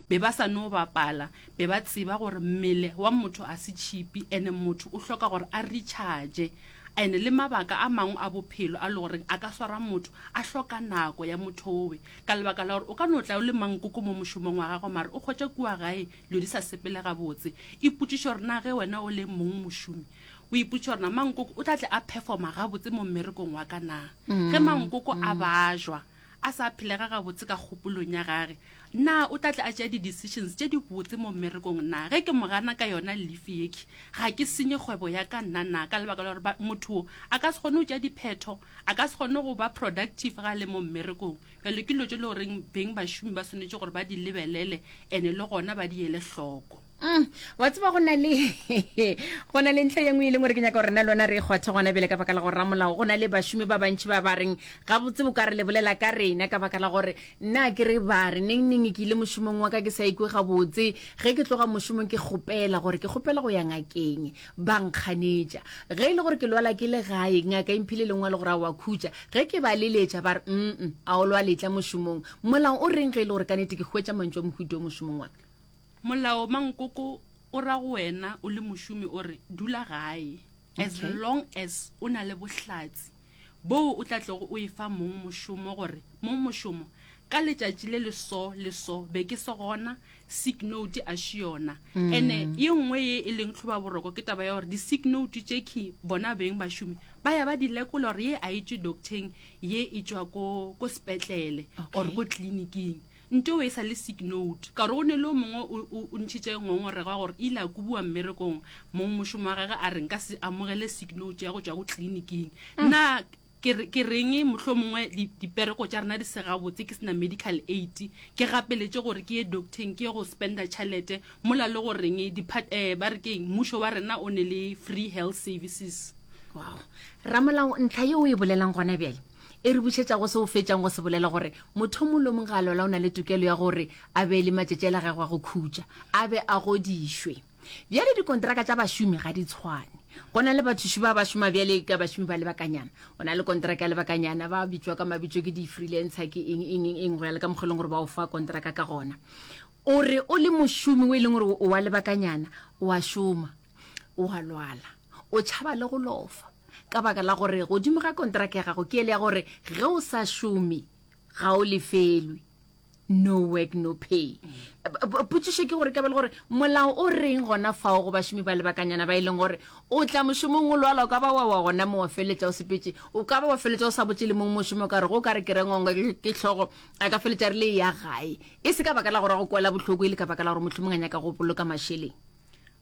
Be ba sa no bapala. Be ba tseba gore mmele wa motho a se tšhipi ene motho o hloka gore a recharge. Ene le mabaka a mangwe a bophelo a le goreng a ka swara motho a hloka nako ya mothowe. Ka lebaka la gore o ka no tla o le mankoko mo mošomong wa gago mare o hwetša kua gae dilo di sa sepele gabotse. Ipotšiše gore na ge wena o le mong mošomi o ipotšiša gore na mankoko o tla tle a performa gabotse mo mmerekong wa ka na. Ge mankoko a bajwa, a sa phelega gabotse ka kgopolong ya gage, na o tla tle a tšea di-decisions tše dibotse mo mmerekong? Na ge ke mo gana ka yona lifi yekhi, ga ke senye kgwebo ya ka nna na? Ka lebaka la gore ba, motho wo a ka se kgone go tšea diphetho, a ka se kgone go ba productive ge a le mo mmerekong. Bjalo ke dilo tše e le goreng beng bašomi ba swanetše gore ba di lebelele and-e le gona ba di ele hloko. Mm, wa tseba go na le go na le ntlha ye nngwe e leng gore ke nyaka gore na lona re e kgwathe gona bele ka baka la go ramolao go na le bašomi ba bantšhi ba ba reng gabotse bo ka re le bolela ka rena ka baka la gore nna ke re ba re neng neng ke ile mošomong wa ka ke sa ikwe gabotse ge ke tloga mošomong ke kgopela gore ke kgopela go ya ngakeng ba nkganetša ge e le gore ke lwala ke le gae ngaka e mphile lengwe le gore a wa khutša ge ke ba leletša ba re mm a o lwaletla mošomong molao o reng ge e le gore ka nete ke hwetša mantšu a mohuto mošomong wa ka Molao mankoko o ra go wena o le mošomi o re dula gae as Okay. long as o na le bohlatsi boo o tla tlogo o e fa mong mošomo gore mong mošomo ka letšatši le le so le so be ke se gona sick note a še yona Mm. ene ye nngwe ye e leng tlhoba boroko ke taba ya gore di-sick note tše key bona beng bašomi ba ya ba di lekola gore ye a e tšwe docteng ye e tšwa ko ko sepetlele or ko tleliniking Ntoo e sa le sick note, ka gore go ne le o mongwe o, o, o ntšhitše ngongorego ya gore ile a kubiwa mmerekong, mong mošomo wa gage a re nka se amogele sick note ya go tšwa go tliliniking. Na ke, re, ke reng mohlomongwe di, dipereko tša rena di se gabotse ke se na medical aid, ke gapeletše gore ke ye doctor-eng ke ye go spender tšhelete, mola le go reng depart, eh, ba re ke eng, mmušo wa rena o ne le free health services. Wow. Ramolao, ntlha ye o e bolelang gona bjale, E re bušetša go se o fetšang go se bolela gore motho o mong le o mong ga a lwala o na le tokelo ya gore a be le matšatši a la gagwe a go khutša, a be a godišwe. Bjale dikontraka tša bašomi ga di tshwane. Go na le bathuši ba ba šoma bjale ka bašomi ba lebakanyana, o na le kontraka ya lebakanyana, ba bitšwa ka mabitšo ke di-freelancer, ke eng, eng, eng, eng, go ya le ka mokgwa e leng gore ba o fa kontraka ka gona. O re o le mošomi o e leng gore o wa lebakanyana, o a šoma. o a lwala o tšhaba le go lofa ka baka la gore godimo ga kontraka ya gago ke ele ya gore ge o sa šome ga o lefelwe no work no pay potsišo ke gore ka be le gore molao o reng gona fao go bašomi ba lebakanyana ba e leng gore o tla mošomong o lwala o ka ba wa wa gona mo wa feletša o sepetse o ka ba wa feletša o sa botse le mong mošomo o ka re go ka re ke rengwangwa ke tlhogo a ka feletša re le ya gae e se ka baka la gore go kwela bohloko e le ka baka la gore mohlomong a nyaka go boloka mašeleng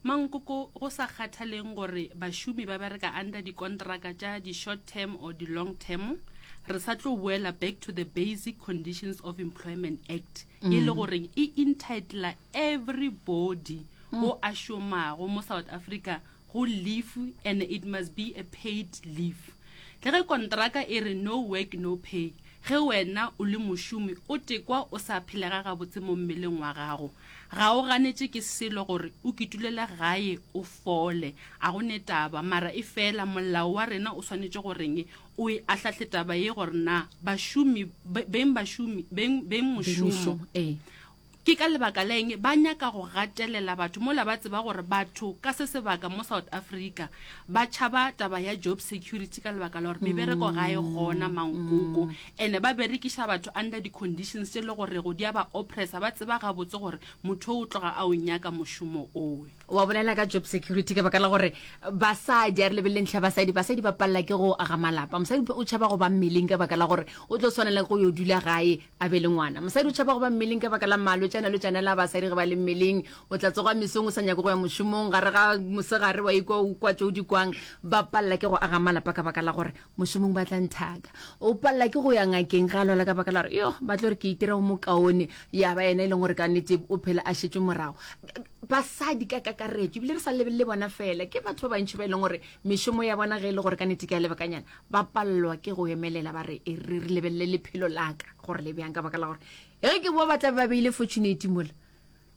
Mankoko go sa kgathaleng gore bašomi ba bereka under dikontraka tša di-short term or di-long term, re sa tlo boela back to the Basic Conditions of Employment Act e le goreng e entitler everybody o a šomago mo South Africa go leave and it must be a paid leave. Le ge kontraka e re no work no pay, ge wena o le mošomi o tekwa o sa phelega gabotse mo mmeleng wa gago, Ga o ganetše ke selo gore o kitulele gae o fole, a go ne taba, mara e fela molao wa rena o swanetše go reng o e ahlahle taba ye gore na bašomi beng bašomi beng beng mošomo ke ka lebaka la eng ba nyaka go gatelela batho mola ba tseba gore batho ka se sebaka mo South Africa ba tšhaba taba ya job security ka lebaka la gore mebereko ga e gona mankoko Ene ba berekiša batho under di conditions tše le go rego di a ba oppressa, ba tseba gabotse gore motho o o tloga a o nyaka mošomo owe. Wa bolela ka job security ka baka la gore basadi, a re lebelele ntlha ya basadi, basadi ba palela ke go aga malapa. Mosadi o tšhaba go ba mmeleng ka baka la gore o tlo swanela ke go yo dula gae a be le ngwana. Mosadi o tšhaba go ba mmeleng ka baka la malwetši a na le tšanela a basadi ge ba le mmeleng. O tla tsoga mesong o sa nyake go ya mošomong, gare ga mosegare wa ikwa o kwa tše o di kwang. Ba palela ke go aga malapa ka baka la gore mošomong ba tla nthaka o palela ke go ya ngakeng ga lwala ka baka la gore yo ba tlo gore ke itira go mokaone ya ba ena e leng gore ka nete o phela a šetse morago basadi ka kakaretso ebile re sa lebelele bona fela ke batho ba bantšhi ba e leng gore mešomo ya bona ge e le gore ka nete ke a lebakanyana ba palelwa ke go emelela ba re e re re lebelele lephelo laka gore le bjang ka baka la gore e ke bo ba tla ba beile fortunate mola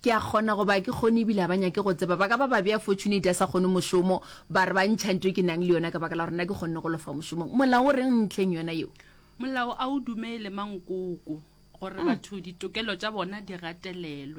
Ke a kgona go ba ke kgone ebile a ba nyake go tseba. Ba ka ba ba bea fortunate a sa kgone mošomo, ba re ba ntšha nto e ke nang le yona ka baka la gore nna ke kgonne go lofa mošomong. Molao o reng ntlheng yona yeo? Molao a o dumele, Mankoko, gore batho ditokelo tša bona di gatelelwe.